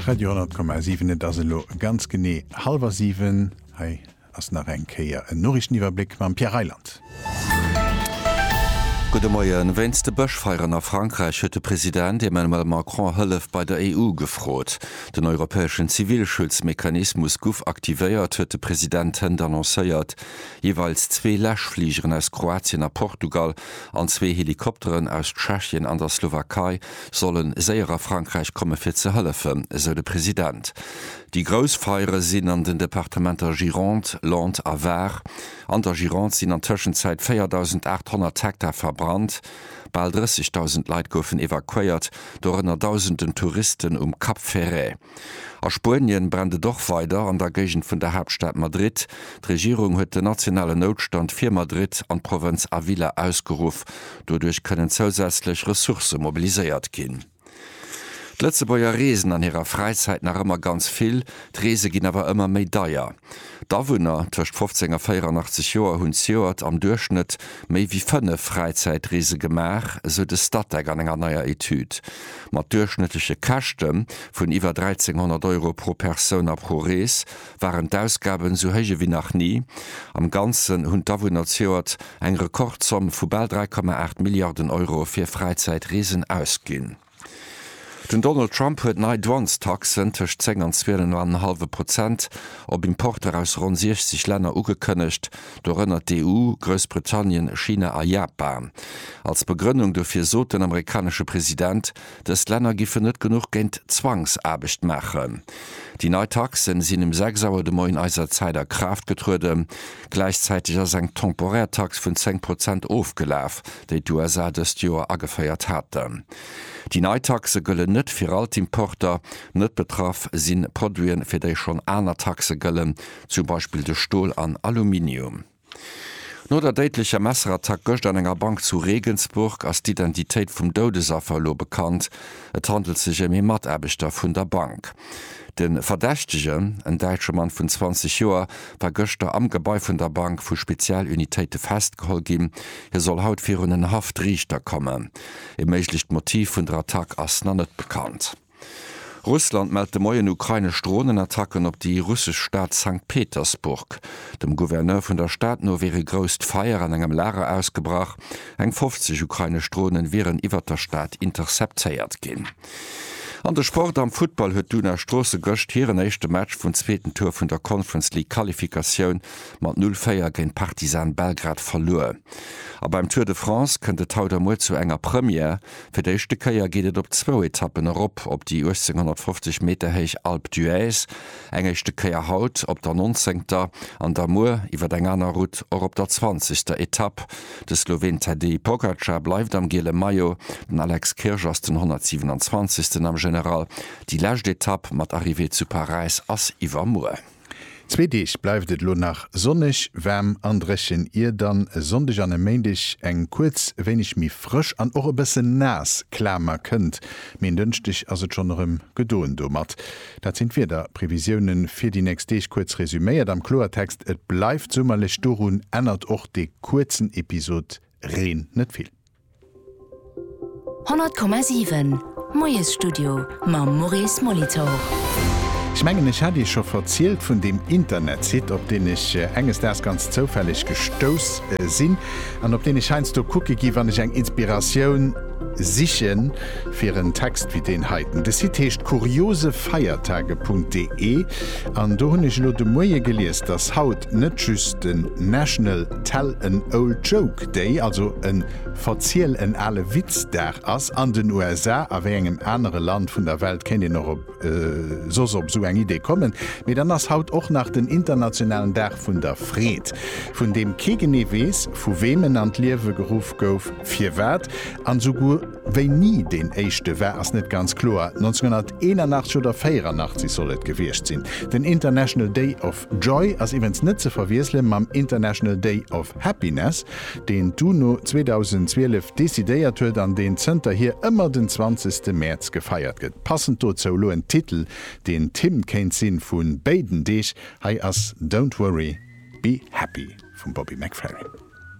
Radio 10,7 Et ass elo ganz genee hallwer 7. Hei ass nach eng Kéier en Noriichteniwwerbléck mam Pierre Reyland. Gudde Moien. Wéinst de Bëschfeieren a Frankräich huet de President Emmanuel Macron Hëllef bei der EU gefrot. Den europäeschen Zivilschutzmechanismus guff aktivéiert, huet de President hënt annoncéiert. Jeeweils zwee Läschfligeren aus Kroatien a Portugal an zwee Helikopteren aus Tschechien an der Slowakei solle séier a Frankräich komme fir ze hëllefen, esou de President. Déi grouss Feiere sinn an den Departementer Gironde, Lot a Var. An der Gironde sinn an Tëschenzäit 4.800 Hektar verbrannt. Bal 30.000 Leit goufen evakuéiert, dorënner Dausenden Touristen um Cap Ferret. A Spuenien brennt et och weider an der Géigend vun der Haaptstad Madrid. D'Regierung huet den nationalen Noutstand fir Madrid an d'Provënz Avila ausgeruff. Doduerch kënnen zousätzlech Ressourcë mobiliséiert ginn. D'Lëtzebuerger reesen an hirer Fräizäit nach ëmmer ganz vill. D'Reese ginn awer ëmmer méi deier. D'Awunner tëscht 15 a 84 Joer hunn zejoert am Duerchschnëtt méi wéi fënnef Fräizäitreese gemaach, esou de Statec an enger neier Etüd. Mat duerchschnëttleche Käschte vun iwwer 1.300 Euro pro Persoun a pro Rees waren d'Ausgaben esou héich ewéi nach ni. Am Ganzen hunn d'Awunner zejoert eng Rekordzomm vu bal 3,8 Milliarden Euro fir Fräizäitreesen ausginn. Den Donald Trump huet nei Douanestaxen tëscht 10 an 12 an en hallwe Prozent op Importer aus ronn 60 Länner ugekënnegt, dorënner d'EU, Groussbritannien, China a Japan. Als Begrënnung dofir sot den amerikanesche President, dës Länner giffen net genuch géint Zwangsaarbecht maachen. Déi nei Taxe sinn um 6 Auer de Moien eiser Zäit a Kraaft getrueden. Gläichzäiteg ass eng temporär Tax vun 10 Prozent ofgelaf, déi d'USA dëst Joer ageféiert haten. Déi nei Taxe gëllen net fir all d'Importer. Net betraff si Produiten, fir déi schonn aner Taxe gëllen, zum Beispill de Stol an Aluminium. No der déidlecher Messerattack gëscht an enger Bank zu Regensburg ass d'Identitéit vum Doudesaffer elo bekannt. Et handelt sech ëm ee Mataarbechter vun der Bank. De Verdächtegen, en däitsche Mann vun 20 Joer, war gëschter am Gebai vun der Bank vu Spezialunitéite festgeholl ginn. Hie soll haut virun en Haftriichter kommen. E méiglecht Motiv vun der Attack ass nach net bekannt. Russland mellt de Moien ukrainesch Dronenattacken op déi russesch Stad Sankt Petersburg. Dem Gouverneur vun der Stad no wier e grousst Feier an engem Lager ausgebrach. Eng 50 ukrainesch Dronen wieren iwwert der Stad interceptéiert ginn. An de Sport, Am Futtball huet d'Una Stroosse gëscht hiren éischte Match vun zweeten Tour vun der Conference League Qualifikatioun mat 0-4 géint Partizan Belgrad verluer. A beim Tour de France kënnt et haut a muer zu enger Première. Fir d'éischte Kéier geet et op zwou Etappen erop op déi 1850 Meter héich Alpe d'Huez, eng éischte Kéier haut op der nonzéngter an da muer iwwer eng aner Route och op der zwanzegster Etapp. De Sloween Tadej Pogacar bleift am giele Maillot, den Alex Kirsch ass den 127. am General. Déi lescht Etapp mat Arrivée zu Paräis ass iwwermuer. Zwee Deeg bleift et elo nach sonneg, waarm an dréchen, ier dann e Sonndeg an e Méindeg eng kuerz wéineg méi frësch an och e bësse naass Klamer kënnt, mee en Dënschdeg ass et schonn erëm gedoen domat. Dat sinn d'Wiederprevisioune fir déi nächst Deeg kuerz resuméiert am Kloertext, Et bleift summerlech, dorun ännert och dee kuerzen Episod Reen net vill. 100,7 Moiesstudio mam Maurice Molitor. Ech mengen ech hat iech scho verzielt vun deem Internetsite op deen ech enges Daags ganz zoufälleg gestouss sinn an op deen ech heiansdo kucke gi wann ech eng Inspiratioun siche fir en Text wéi deen heiten. De Site heescht kuriosefeiertage.de an do hunn ech elo de Moie gelies, datt haut net just den National Tell an Old Joke déi also en Verziel en ale Witz-Dag ass, an den USA, a wéi engem anere Land vun der Welt kéint een och op soss op esou eng Idee kommen? Mee dann ass haut och nach den internationalen Dag vun der Freed, vun deem kee genee weess, vu weem en an d'Liewe geruff gouf, firwat an esouguer wéini deen éischte war, ass net ganz kloer. 1981 oder 84 soll et gewiescht sinn, den International Day of. Joy ass iwwens net ze verwiessele mam International Day of Happiness, deen d'UNO 2012 decidéiert huet an deen zënterhier ëmmer den 20 ste Mäerz gefeiert gëtt. Passend dozou elo en Titel, deen d'Hymn kéint si vu béiden Deeg, hei ass Don't Worry, Be Happy vum Bobby McFerrin.